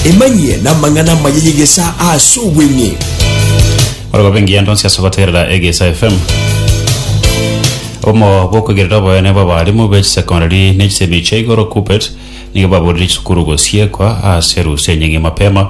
Emanyie n'amang'ana amaya y'egesaa ase obweng'e. Ore gobe engiya ndonsi ase gotegerera Egesa FM. Obomo bw'okwegerera oboyene bw'abarimu be chisecondary ne chisemi chia igoro, KUPPET, nigo baborire chisukuru gosiekwa ase erusa enyinge mapema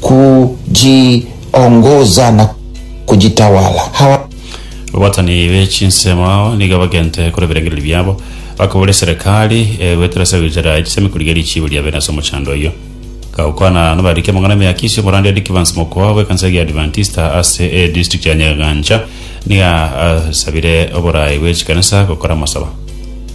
kujiongoza na kujitawala. Hawa Abaatani be chinsemo nigo bagente kore ebirengererio biabo, bakabora eserekari egwetera ase egochera echisemi korigereria echiibo ria bene ase omochando oyio. Gakokwana nabarike amang'ana emiakisi, omoranda Eric Evans Mokoa bw'ekanisa eria Adventista ase e district ya Nyagancha nigo asabire oboraai bwe chikanisa gokora amasaba.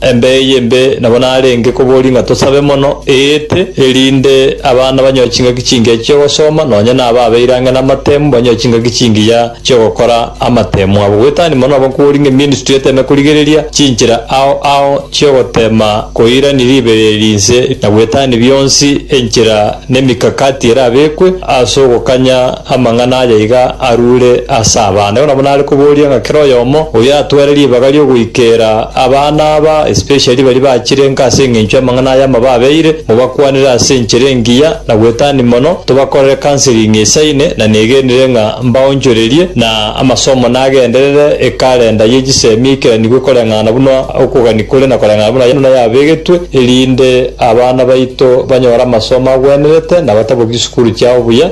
Embe eye embe nabo narenge koboria ng'a tosabe mono, eete, erinde abana banyoe chingaki chingiya chi'ogosoma, nonya na aba abeire ang'e namatemu banyoe chingaki chingiya chi'ogokora amatemu abo. Goetani mono nabo nkoboria ng'a eministry eteme korigereria chinchera ao ao chi'ogotema koirania ribereria rinse, na goetani bionsi enchera na emikakati erabekwe as'ogokanya Amang'ana aya iga arure ase abana. Igo nabo nare koboria ng'a kera oyomo oyo atware ribaga riogoikera abana aba, especially baria bachirenka ase engencho y'amang'ana aya amababeire, mobakwanere ase enchera engiya na gwetania mono, tobakorere counseling esaine, na negenire ng'a mbaonchorerie na amasomo nagenderere ekalenda ye chisemi eikeranigwe koreng'ana buna okogania kore na koreng'ana buna yaino nayabegetwe, erinde abana baito banyore amasomo agwenerete na bataboki chisukuru chiabo buya.